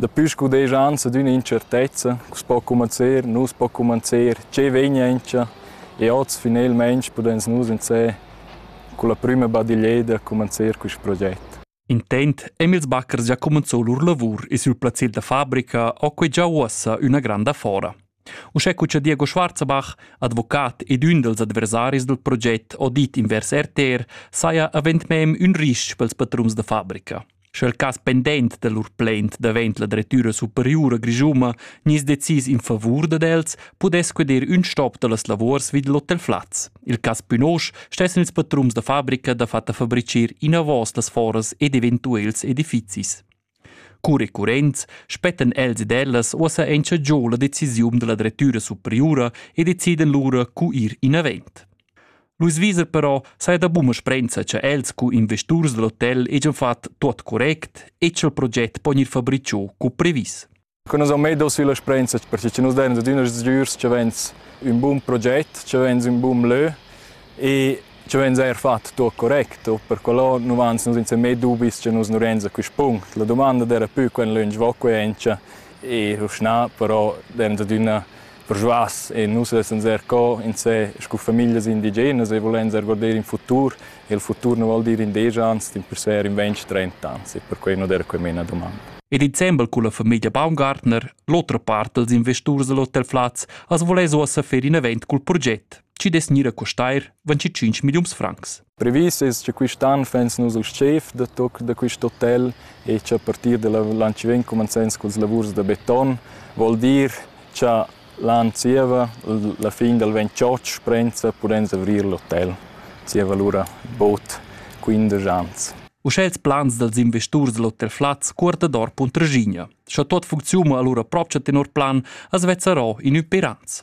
Daplü scudeschans adüna intschertezza cu's po cumanzer, nu's po cumanzer, che vegna aint e hoz finelmaing pudens nus insè culla prüma badiglieda cumanzer quist proget. Intent Emils Backers già cumanzò lur lavur e sül plazzet da fabrica ho que già uossa üna granda fora. Uschè cu cha Diego Schwarzbach, advocat ed ün dals adversaris dal proget audit invers RTR, saja avend mem ün ris-ch pels patrums da fabrica. Sche il cas pendent da lur plaint davent la drettüra superiura grischuma gnis decis in favur dad els, pudess queder ün stop da las lavors vid l'Hotel Flaz. Il cas Pünosch stessen ils patrums da fabrica da fatta fabrichir inavos las foras ed eventuels edifizis. Cur recurrents spettan els ed ellas uossa auncha giò la decisiun da la drettüra superiura e decidan lura cu ir inavant. Luis Wieser però saja da buna sprenza cha els cu investurs da l'hotel hegian fat tuot correct e cha'l proget po gnir fabricho co previs. Con nus han medo sulla sprenza perché che nus dein ad üna sgürs che vegns ün bun proget, che vegns ün bun lö e che vegns eir fat tuot correcto. Per quello nu vans nus insa mê dubis che nus nu renza quist punct. La dumanda d'era pü quant lönch vo quaincha e uschna, però dein ad üna Perschuas e nus vessan ser co insé scu famiglias indigenas e volein ser guarder in futur e il futur nu vol dir in desch ans, din persuer in ventg, trenta ans e perquei nu der quei mena domanda. E december cun la famiglia Baumgartner, l'otra part dels investurs dell'Hotel Flaz, as voless uossa fer in event cul proget, chi dess gnir a costair 25 milliuns francs. Previs es cha quist an fains nus il schef da toc da quist hotel e cha a partir da l'an chi vegn cumanzains culs lavurs da beton, voul dir cha l'an zieva la fin dal ventschotg prenza pudens avrir l'hotel zieva lura bod quindesch ans. Uschè ils plans dals investurs da l'hotel Flaz cuorta dor Puntraschigna. Scha tuot funcziuna alura propcha tenor plan as vezzarò in ün per ans.